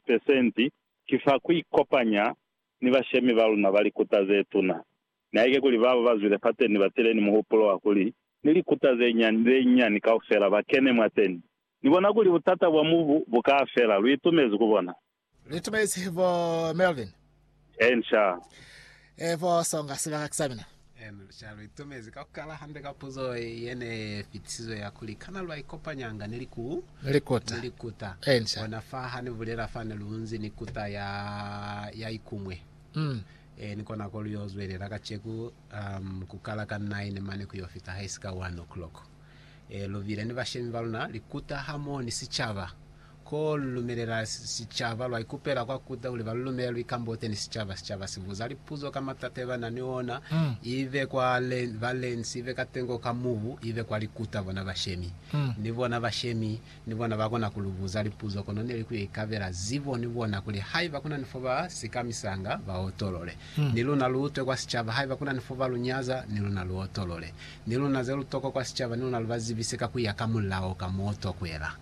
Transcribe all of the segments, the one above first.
pesenti ki fa ku ikopanya ni bashemi ba luna ba likuta ze tuna. Nihaike kuli babo ba zwile fateni ba tile ni muhupulo wa kuli ni likuta ze nyani ze nyani kaufela ba kene mwateni, ni bona kuli butata bwa mubu bu ka fela. Lu itumezi ku bona? Lu itumezi bo Melvin? Ensha. E bo songa sibaka sa mina. Ena lushaka lu itomezi ka ku kala hande ka puzo ye ne fitisizwe ya kuli, Kana lwa ikopanyanga ni liku, ni likuta, ni likuta? Ensha. Ona fa ha ni bulela fa ne lu nzi ni kuta ya, ya ikumwe. Mm. E, ni kona ko lu yo zwelela kaceku, um, ku kala ka nine mane ku yo fita haisika one o'clock. lu bile ni bashemi ba luna likuta hamoho ni sicaba. Ko lu lumelela sicaba, lwa ikupela kwa kuta kuli ba lu lumele luikambote ni sicaba. Sicaba si buza lipuzo ka matata ye ba na ni ona, ibe kwa balensi, ibe katengo ka mubu, ibe kwa likuta bona bashemi. Ni bona bashemi Ni bona ba kona ku lu buza lipuzo kono ne li ku yo ikabela zibo ni bona kuli haiba ku na ni fo ba si kamisanga, ba otolole. Ni luna lu utwe kwa sicaba, haiba ku na ni fo ba lu nyaza, ni luna lu otolole. Ni luna ze lu tokwa kwa sicaba, ni luna lu ba zibise ka ku ya ka mulao ka m'o tokwela.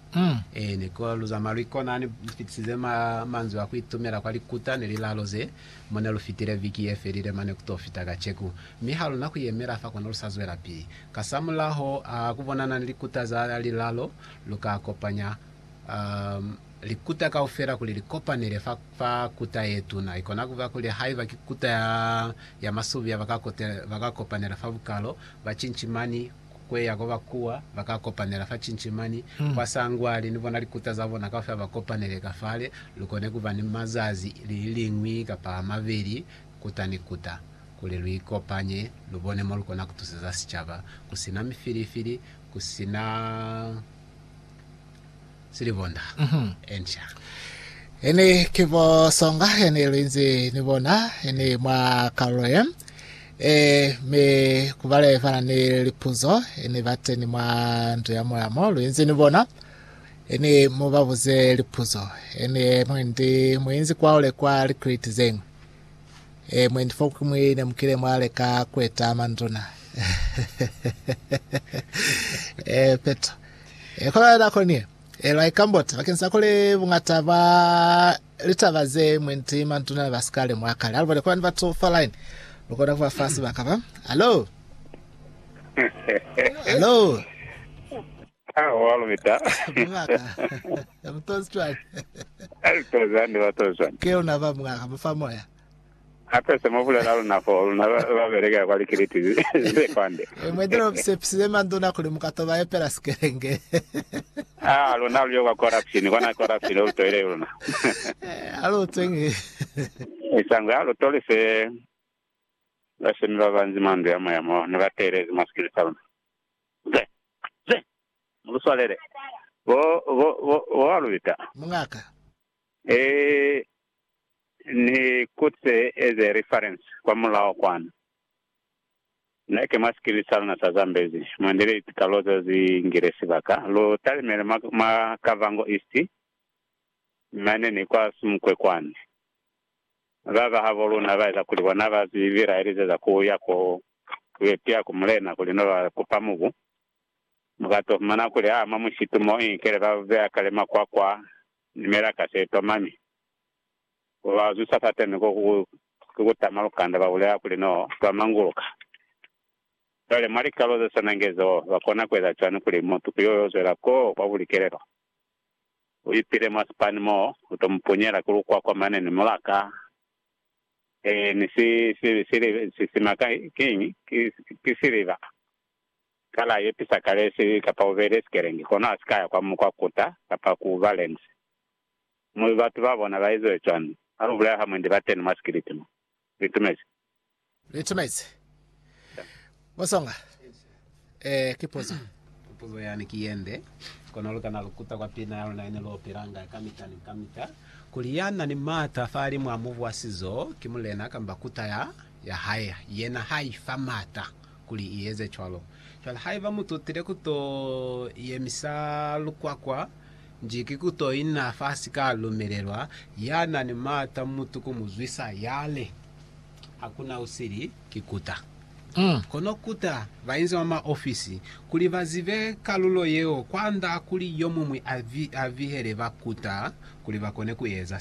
Ee, ni kola lu zamaya lu ikona. Ni fitisize ma, manzwi a ku itumela kwa likuta ni lilalo ze, mo ne lu fitile viki ye felile mane ku t'o fita kaceku. Mi ha lu na ku yemela fa, kono lu sa zwelapili. Kasamulaho a ku bonana ni likuta za lilalo, lu ka kopanya likuta kaufela kuli li kopanele fa kuta ye tuna. I kona ku ba kuli haiba ki kuta ya masubia, ba ka kopanela fa bukalo, ba cincimani ku eya ko ba kuwa, ba ka kopanela fa cincimani, kwa sangwali, ni bona likuta za bona kaufela ba kopanele ka fale. Lu kone ku ba ni mazazi liñwi kapa a mabeli kuta ni kuta kuli lu ikopanye, lu bone mo lu kona ku tuseza sicaba ku si na mifilifili, ku si na silibonda, etc. Ini ki bo Songa yene lu inzi ni bona ini mwa kalulo ye. E, mi ku bale bana ni lipuzo ini bateni mwa ndu ya moya mo lu inzi ni bona, ini mu ba buze lipuzo. Ini mwendi mu inzi kwaule kwa likriti zeñwi. Eh, mwendi fa ku mwi ne mukile mwa leka kweta manduna. eh, peto. Eh, kwa bana ko nie. Eh, lwa ikambota, bakeng sa kole bungata ba litaba ze mwendi manduna ba sikale mwa kale. Alubone kwa bana batu fa line. Lukona kuba fa sebaka ba. Hello? Hello? Haa wa lubeta. Mungaka. Mu tozi cwani? Ai tozi hande ba tozi cwani? Ke luna ba mungaka mu fa moya. Hape se mu bulela luna foo, luna ba beleka kwa likiliti ze kwande. Mwe dula mu sepisize manduna kuli mu ka to ba epela sikelenge. Haa luna lu yo kwa corruption, kwana corruption lu toile luna. Ha lu utwe nge. Isangwe ha lu toli se bashemi ba banzi mwa ndu ya moya mo ne ba teelezi mwa sikili sa luna. Ze, ze! Muluswalele, bo, bo, bo, boalubita. Mungaka. E, ni kutse as a reference kwa mulaho kwanu. Ne ke mwa sikili sa luna sa Zambezi, mwa ndile litikalo ze zi ngile sibaka. Lu talimele mwa, mwa Kavango East, mane ni kwa Sumkwe kwani. Mi baba habo luna ba eza kuli bona ba si bilaelizeza ku ya ko yo tiya ku mulena kuli no ba kupa mubu, mu ka to fumana kuli ha mwa mushitu mo inkele ba beya kale makwakwa ni melaka se toma mi bo ba zusa fateni ko ku kutama lukanda ba bulela kuli no twa manguluka. Cwale mwa likalo ze swanange zo, ba kona ku eza cwani kuli mutu ku yo yo zwela ko kwa bulikelelo? U ipile mwa sipani mo u to mu punyela ku lukwakwa mane ni mulaka. Ee, ni si, si, sili, sisima ka, kiñi? Ki, ki siliva. Kala ye pisa kale si, kapa u beile sikelengi, kono ha si ka ya kwa, kwa kuta, kapa ku ba lense. Mu, batu ba bona ba eziwe cwani? Ha lu bulela ha mwendi bateni mwa sikiliti mo. Ni tumezi. Ni tumezi. Bosonga, eh, ki puzo. Puzo yani ki yende, kono lukana lukuta kwa pina ya luna yene lu opelanga kamita ni kamita, kuli yana ni mata fa limu a mubu wa sizo ki mulena kamba kuta ya, ya hae. Yena ha ifa mata kuli i eze cwalo. Cwale haiba mu tutile ku to yemisa lukwakwa nji, ki ku to ina fa si ka lumelelwa. Ya na ni maata mutu ku mu zwisa, ya li, Hakuna usili, ki kuta. Kono kuta bainzi ba mwa ofisi kuli ba zibe kalulo yeo kwand'a kuli yo muñwi a bihele ba kuta kuli ba kone ku eza se.